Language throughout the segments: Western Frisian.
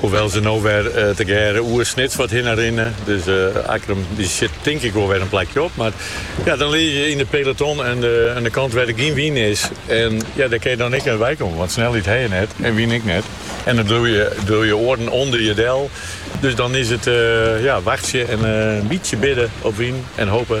Hoewel ze no wer tegearre oer Snits wat hinne rinne.. Dus Akkerum die sit tink ik wol wer in plakje op. Mar ja, dan lizze je yn it peloton oan de, oan de kant wêr't der gjin wyn is. En ja, dêr kin je dan ek net wei komme. Want snelheid ha je net en wyn ek net. En dan bliuw je, bliuw je oaren ûnder je del. Dus dan is it ja, wachtsje en in bytsje bidde op wyn en hoopje.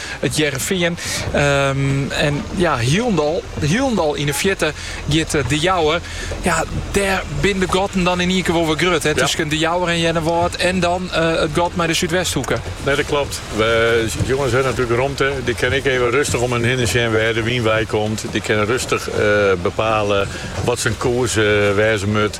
It Hearrenfean en ja hielendal hielendal yn 'e fjirte giet De Jouwer. Ja dêr binne de gatten dan yn ien kear wol wer grut hè tusken De Jouwer en Earnewâld en dan it gat mei de Súdwesthoeke. No dat klopt. De jonges hawwe natuerlik romte. Dy kinne ek even rustich om har hinne sjen wêr de wyn wei komt. Dy kinne rustich bepale wat syn koers wêze moat.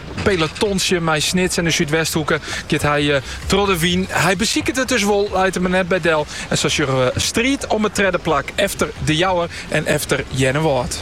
Pelotonsje mei Snits en de Súdwesthoeke giet hy troch de wyn. Hy besiket it dus wol, leit him der net by del en sa sjogge we striid om it tredde plak efter De Jouwer en efter Earnewâld.